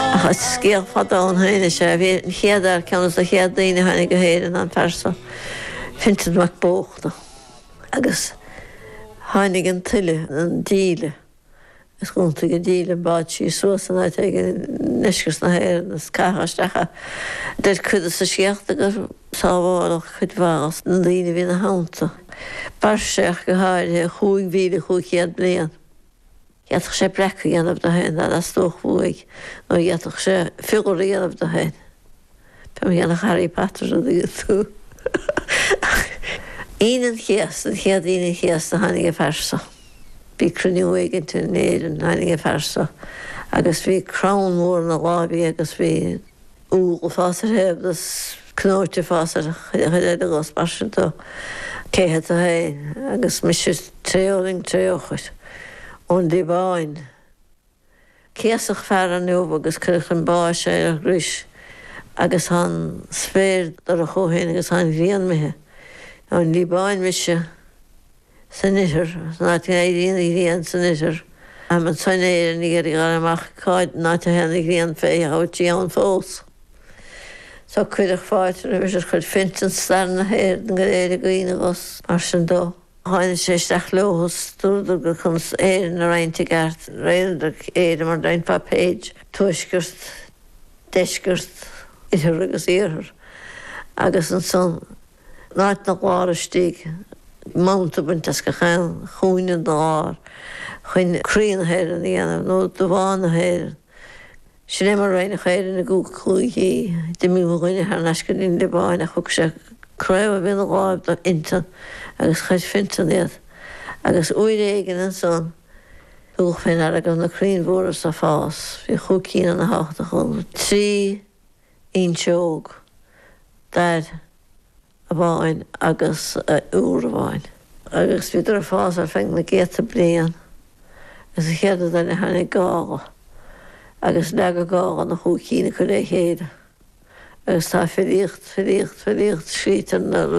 Ach is scéal fada ann féin is ea é an chéad fhear, ceann des na chéad daoine a tháinig go hÉirinn, an phearsa Fintan Mac Bóchra. Agus tháinig an tuile, an díle, is d'iontaigh an díle an bád síos suas in áit éigin i ndeisceart na hÉireann is caitheadh isteach é. Deir cuid des na scéalta gur sábháladh cuid mhaith des na daoine a bhí ina theannta. Mhair sé ach go háirithe, chúig mhíle cúig chéad bliain. D'fhéadfadh sé breac a dhéanamh de féin dá dteastódh uaidh, nó d'fhéadfadh sé fiolar a dhéanamh de féin. Fé mar a dhéanadh Harry Potter an dtuigeann tú. Aoine an Chéasta, an chéad Aoine an Chéasta tháinig an phearsa. Bhí cruinniú éigint in Éirinn, tháinig an phearsa agus bhí crann mór ina láimh aige agus bhí. úlla ag fás ar thaobh de is cnóite ag fás ar chuid eile de agus mar sin dó cé hé tú fhéin agus mise Trefuilngid Treochair ón Liobáin céasadh fear inniu agus cuireadh chun báis é ar chrois agus tá an spéir dorcha ó shin agus tá an ghrian imithe ón Liobáin mise. san oirthear, san áit a éiríonn an ghrian san oirthear, táim anso in Éirinn ag iarraidh a fháil amach cad é an áit a théann an ghrian fé a thabhairt dí ann fós. Tá cuireadh fáilte roimis is chuir Fintan stair na hÉireann go léir i gcuimhne agus mar sin dó. Tháinig sé isteach leo thuas, dúradar gur conas Éirinn a roinnt i gceart, roinneadar Éire mar a roinnfeá page, tuaisceart, deisceart, oirthear agus iarthar, agus ansan in áit ina lár istigh, smut a bhaint as gach aon chúinne den lár chun croí na hÉireann a dhéanamh, nó de bhá na hÉireann. Sin é mar a roinneadh Éire ina cúigí. D'imigh mo dhuine thar n-ais go dtí an Liobáin ach thug sé craobh a bhí ina láimh do Fhintan agus chuir Fintan iad. Agus uair éigin ansan tugadh fé ndeara go raibh na crainn mhóra so ag fás. Bhí chúig cinn ana-thábhachtach acu. Trí. fhuinseog, dair amháin agus iúr amháin. Agus bhíodar ag fás ar feadh na gcéadta bliain. Agus an chéad rud eile tháinig gála. Agus leag an gála na chúig cinn acu le chéile. Agus tá filíocht, filíocht, filíocht scríte ar na rudaí.